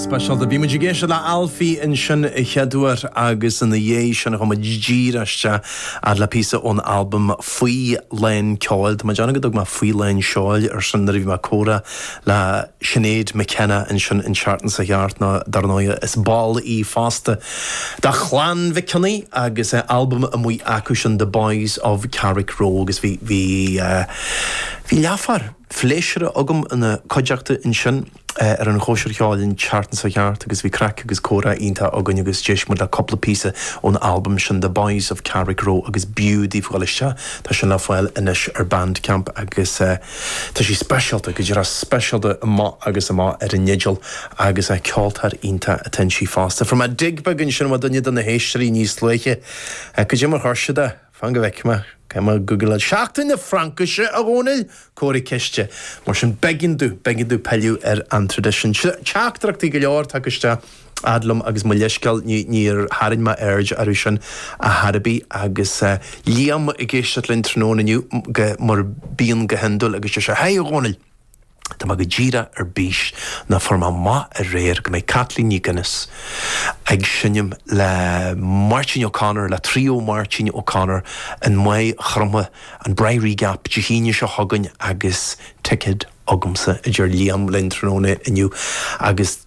speisialta. Bhí muid ag éisteacht le Alfie ansin a chéaduair agus ina dhiaidh sin chuaigh muid díreach isteach ar le píosa ón albam Faoi Lán Ceoil. Tá mé ag déanamh go dtug mé Faoi Lán Seoil air sin nuair a bhí mé ag comhrá le Sinéad McKenna ansin an tseachtain seo chuaigh thart nó dar ndóigh is ball í fosta de Chlann Mhic Cionnaith agus albam amuigh acu sin The Boys of Carrickroe agus bhí bhí bhí leathuair phléisiúrtha agam ina cuideachta ansin ar an gcóisir cheoil an tseachtain seo chuaigh thart agus bhí craic agus comhrá iontach againn agus d'éist muid le cúpla píosa ón albam sin The Boys of Carrickroe agus b'fhiú daoibh dhul isteach, tá sin le fáil anois ar Bandcamp agus tá sé speisialta, go díreach speisialta amach agus amach ar an fhidil agus ceoltóir iontach atá inti fosta. Fuair mé dig beag ansin ó dhuine de na héisteoirí níos luaithe, cad é mar a chuir siad é. Fan go bhfeicfidh mé. Caithfidh mé googláil. Seachtain na Fraincise, a Dhomhnaill! Comhartha ceiste. Mar sin, b'éigean domh, b'éigean domh pilleadh ar an traidisiún. Sea, teachtaireachtaí go leor tagtha isteach fhad liom agus mo leithscéal níor tharraing mé aird orthu sin ar chor ar bith agus Liam ag éisteacht linn tráthnóna inniu, mar a bhíonn go hiondúil, agus deir sé, Hi, a Dhomhnaill! Tá mé go díreach ar bís nó fuair mé amach aréir go mbeidh Kathleen MacInnes ag seinm le Máirtín O'Connor, le Trio Máirtín O'Connor i Maigh Chromtha, an Briary Gap, Dé hAoine seo chugainn agus ticéad agamsa, a deir Liam linn tráthnóna inniu agus.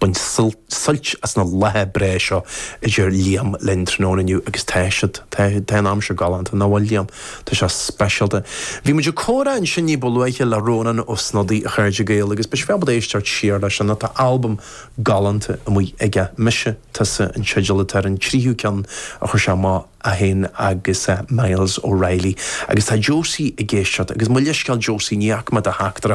Bain suilt as na laethe breá seo a deir Liam linn tráthnóna inniu agus tá siad, tá, tá an aimsir galánta, nach bhfuil Liam? Tá sé speisialta. Bhí muid ag comhrá ansin ní ba luaithe le Rónán Ó Snodaigh, a chairde Gael, agus beidh sibh ábalta éisteacht siar leis an, tá albam galánta amuigh aige, Mise, Tusa an teideal atá ar an tríú ceann a chuir sé amach, é féin agus Myles O'Reilly. Agus tá Josie ag éisteacht, agus mo leithscéal Josie, ní fhaca mé do theachtaireacht.